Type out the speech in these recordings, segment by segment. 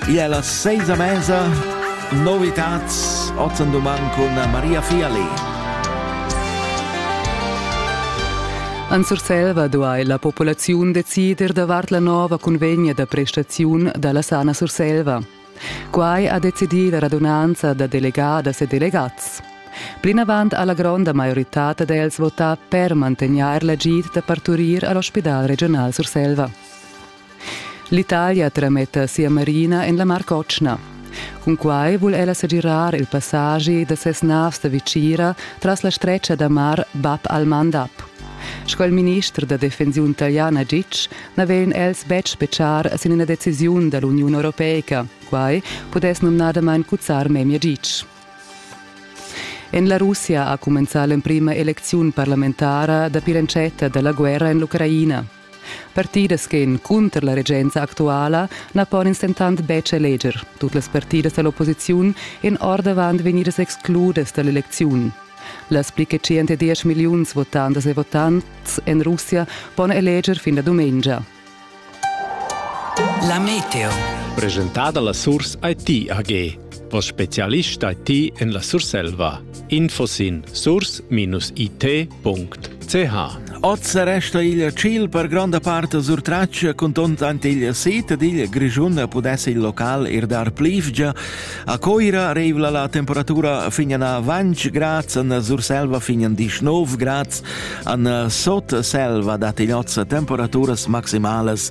Igl è las seis a mesa. Novitats ozen duman cun Maria Fiali. En Surselva duai la populaziun decider davart la nova cunvegna da prestaziun da la Sana Surselva. Quai ha decidì la radunanza da delegadas e delegats. Plinavant ha la gronda maioritad d'els votà per mantegnair l'agid da parturir a l'ospidal regional Surselva. L'Italia trametta sia marina en la Mar Cotschna. Cunquai vul ella segirar il passagi da ses navs da vicira tras la stretga da mar Bab al-Mandab. Sco il minister da defensiun italiana Gic n'avevan els betg betschar sin ina decisiun da l'Uniun Europeica, quai pudess numnadamain cuzzar memia Gic. En la Russia ha cumenzà l'emprima elecziun parlamentara dapi l'entschatta da la guerra en l'Ucraina. Partidas ch'èn cunter la regenza actuala na pon ins dentant betg eleger. Tut las partidas da l'opposiziun èn ordavant vegnidas excludas da l'elecziun. Las pli che 110 milliuns votantas e votants en Russia pon eleger fin la dumengia. La Meteo. Presentada la Source IT AG. O specialista ti en la Surselva. Info sin source-it.ch Oz resta il ciel per gronda parte surtraccia contant ante il sit ed il Grischun pudesse il local ir dar plivgia. A Coira revla la temperatura fin a 20 grad, an Surselva fin a 19 grad, an Sotselva dat in oz temperaturas maximales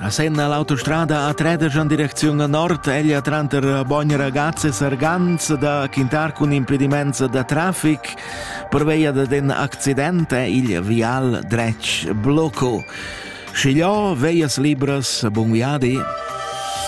A Senna l'autostrada a Trederg en direcziun a nord, ella tranter Bogn Ragazze e Sargans da quintar cun impediments da traffic pervia da in accident è il vial dretg blocco. Schigliò, veias libras, bun viadi.